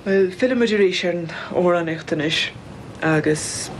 Bhuel, fillimid arís ar an amhránaíocht anois, agus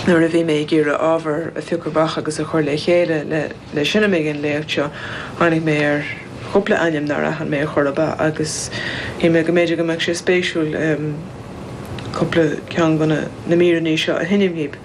nuair a bhí mé ag iarraidh ábhar a phiocadh amach agus a chur le chéile le seinm ag an léacht seo, tháinig mé ar chúpla ainm nár aithin mé ar chor ar bith, agus shíl mé go mb'fhéidir go mbeadh sé spéisiúil cúpla ceann de na míreanna seo a sheinm dhaoibh.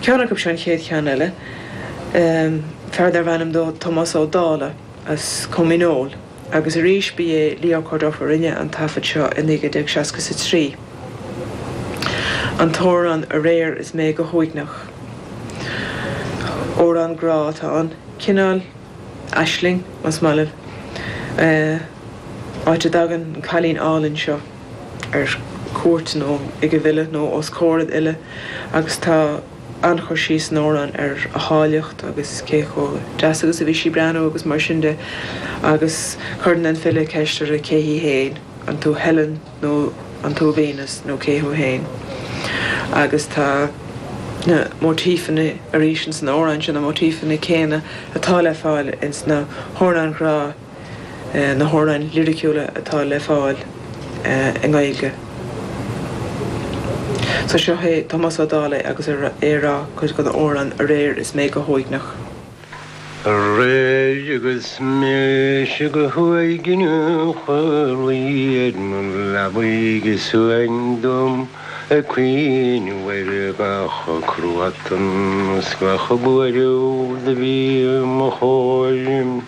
Ceann acu seo an chéad cheann eile, fear darbh ainm dó Tomás Ó Dálaigh, as Com Dhíneol. Agus arís, ba é Leo Corduff a rinne an taifead seo i 1963 an t-amhrán Aréir is Mé go hUaigneach. Amhrán grá atá ann, cineál aisling, más maith libh, áit a dtagann an cailín álainn seo ar cuairt nó ag an bhfile nó os comhair an fhile agus tá. an-chur síos san amhrán ar a háilleacht agus cé chomh deas agus a bhí sí ag breathnú agus mar sin de agus cuireann an file ceist uirthi cé hí féin, an tú Helen nó an tú Venus nó cé thú féin? agus tá na móitífeanna arís ins an amhrán seo, na móitífeanna céanna atá le fáil ins na hamhráin ghrá. na hamhráin liriciúla atá le fáil i nGaeilge. So seo é Tomás Ó Dálaigh agus é a' rá cuid den amhrán aréir is mé go huaigneach. Aréir agus mise go huaigneach a' luí ar mo leabaidh suain dom ag cuimhneamh ar gach cruatan is gach buaireamh do bhí 'mo chomhair.